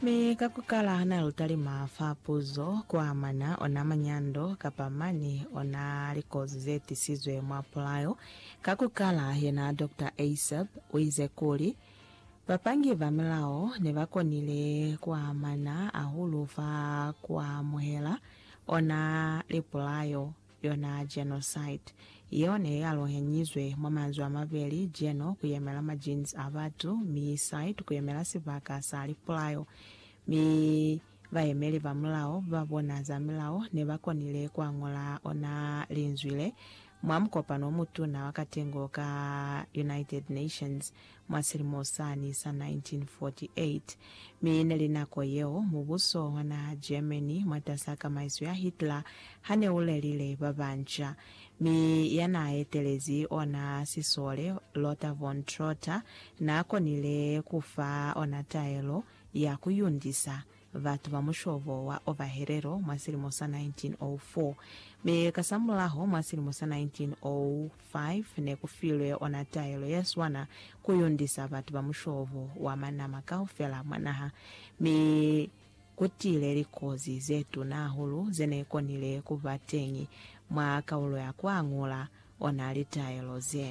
Mi ka ku kala na lu talima fa puzo ku amana ona manyando kapa mani ona likozi ze tisizwe mwa pulayo. Ka ku kala, yena Doctor Eiseb uize kuli, Bapangi ba milao ne ba konile ku amana ahulu fa ku amuhela ona lipulayo Yona genocide yeo ne ya lohenyizwe mwa manzwi a mabeli, geno ku yemela ma genes a batu, mi site ku yemela sibaka sa lipulao. Mi bayemeli ba mulao ba bona za milao ne ba konile ku añola ona linzwi le mwa mukopano o mutuna wa katengo ka United Nations mwa silimo sani sa 1948, mi neli nako yeo mubuso wa naha Germany mwatas'a kamaiso ya Hitler hane ulelile babanca, mi yanaaetelezi ona sisole Lothar von Trotha naakonile kufa ona taelo ya kuyundisa batu ba mushobo wa Ovahelelo mwa silimo sa 1904, mi kasamulaho mwa silimo sa 1905 ne ku filwe ona taelo ye swana ku yundisa batu ba mushobo wa manama kaufela mwa naha, mi ku tile likozi ze tuna hahulu ze ne konile ku ba teñi mwa kaulo ya ku añula o na li taelo ze.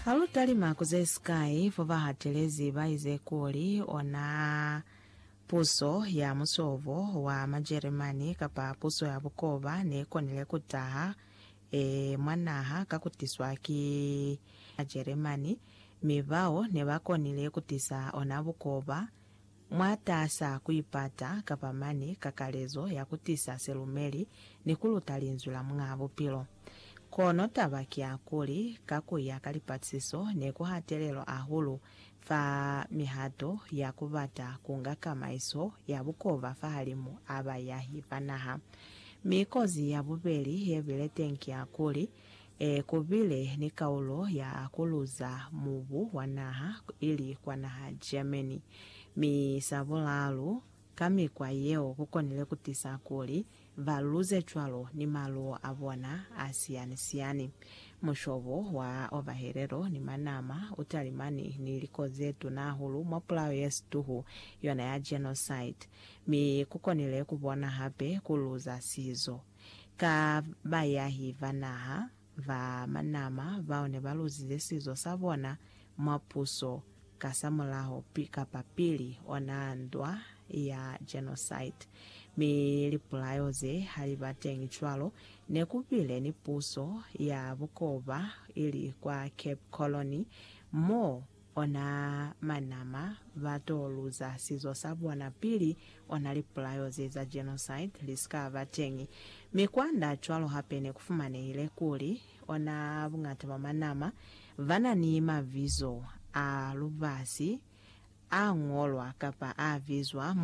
Ha lu talima ku ze sikai fo ba hatelezi ba ize kuli o na puso ya musovo wa Majeremani kapa puso ya bukoba ne konile ku taha e mwa naha ka ku tiswa ki Majeremani, mi bao ne ba konile ku tisa ona bukoba, Mwataasa kuipata kapa mane kakalezo ya kutisa silumeli ni kuluta Linzwi la Muñaa Bupilo. Kono taba kiyakuli, ka kuya ka lipatisiso, nekuhatelelwa ahulu fa mihato ya kubata kunga kamaiso ya bukoba fahalimu a bayahi ba naha. Mi kozi ya bubeli yebile teñi kiyakuli, E kubile ni kaulo ya ku luza mubu wa naha ili kwa naha Germany. Mi sa bulaalu, ka mikwa yeo ku konile ku tisa kuli ba luze cwalo ni maluwo a bona a siyani-siyani. Mushobo wa ovahelelo ni manama u talimani ni liko ze tuna hahulu mwa pulao ye situhu, yona ya genocide. Mi ku konile ku bona hape ku luza sizo. Ka bayahi ba naha ba manama bao ne ba luzize sizo sa bona mwa puso kasamulaho kapa pili ona ndwa ya genocide, mi lipulayo ze ha li ba teñi cwalo, ne ku bile ni puso ya bukoba ili kwa Cape Colony mo Ona manama ba to luza sizo sa bona pili ona lipulayo ze za genocide li si ka ba teñi. Mi kwanda cwalo hape ne ku fumanehile kuli ona buñata bwa manama ba na ni mabizo a lubasi a ñolwa kapa a bizwa